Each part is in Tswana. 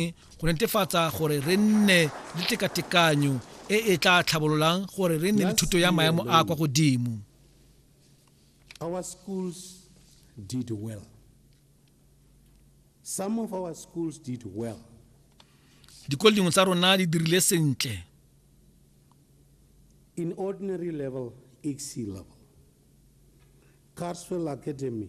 eng go netefatsa gore re nne le tekatekanyo e e tla tlhabololang gore re nne le thuto ya maemo a kwa godimo our schools did well some of our schools did well dikolo dingwe tsa rona di dirile sentle in ordinary level ec level carswell academy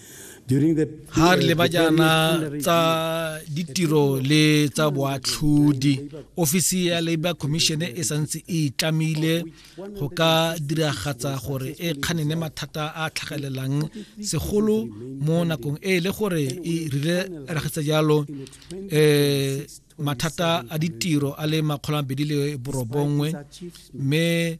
ga re le bajana tsa ditiro le tsa boatlhodi ofisi ya labor commission e santse e tlamile go ka diragatsa gore e kganene mathata a tlhagelelang segolo mo nakong e le gore e rile ragatsa jalo um mathata a ditiro a le makgolo a mabedi le borobongwe mme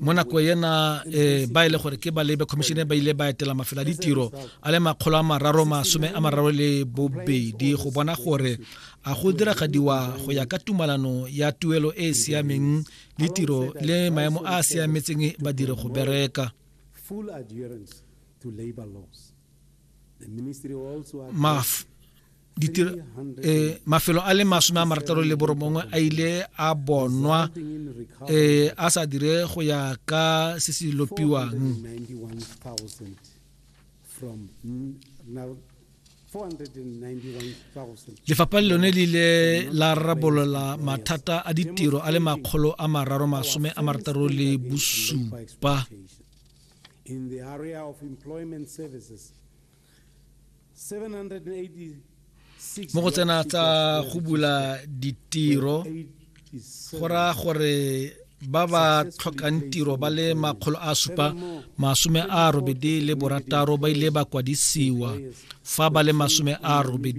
mo nako ena e ba e le gore ke ba labor commission ba ile ba etela mafelo a ditiro a le makgolo a mararo masome a mararo le bobedi go bona gore a go diragadiwa go ya ka tumalano ya tuelo e e siameng le tiro le maemo a a siametseng badiri go bereka maf eh, mafelo a le masome a marataro le borobongwe a ile a bonwa eh, a sa dire go ya ka se se lopiwang lefapha le lone le ile la rarabolola mathata a ditiro a le makgolo a mararo masome a marataro le bosupa mo go tsena tsa go bula ditiro go raya gore ba ba tlhokang tiro ba le makgolo a supa masome a robedi le borataro ba ile ba kwadisiwa fa ba le masome a robedi